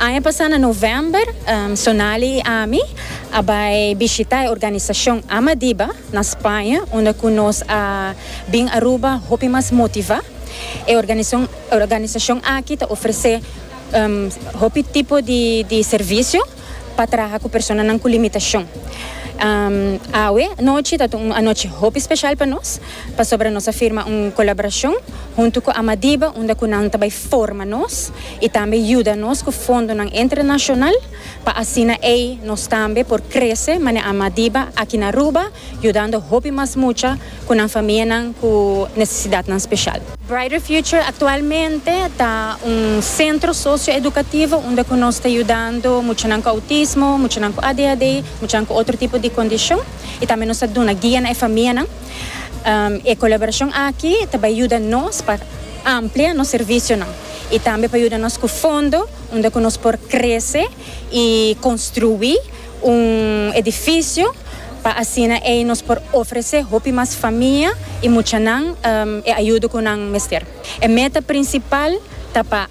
Aña pasá na novèmber, Sonali i ami a bai bishitá e organisashon Amadiba na Spaña, unda ku nos a bin Aruba hopi mas motivá. E organisashon aki ta ofresé hopi tipo di servisio pa traha ku personanan ku limitashon. Awe anochi ta un anochi hopi speshal pa nos, pasobra nos a firma un kolaborashon huntu ku Amadiba unda ku nan ta bai forma nos. y tambe yuda nos cu fondonan entre nacional pa asina ey nos tambe por crece mane ama diba aki na Aruba yudando hopi mas mucha cu nan famianan cu necesidadnan special. Brighter Future actualmente ta un centro socio-educativo unda cu nos ta yudando muchanan cu autismo, muchanan cu ADHD, muchanan cu otro tipo di condicion y tambe nos ta duna guia na e famianan. E colaboracion aki ta bay yuda nos pa amplia nos servicionan y tambe pa yuda nos cu fondo unda cu nos por crece y construi un edificio pa asina ey nos por ofrece hopi mas famia y muchanan e ayuda cu nan mester. E meta principal ta pa.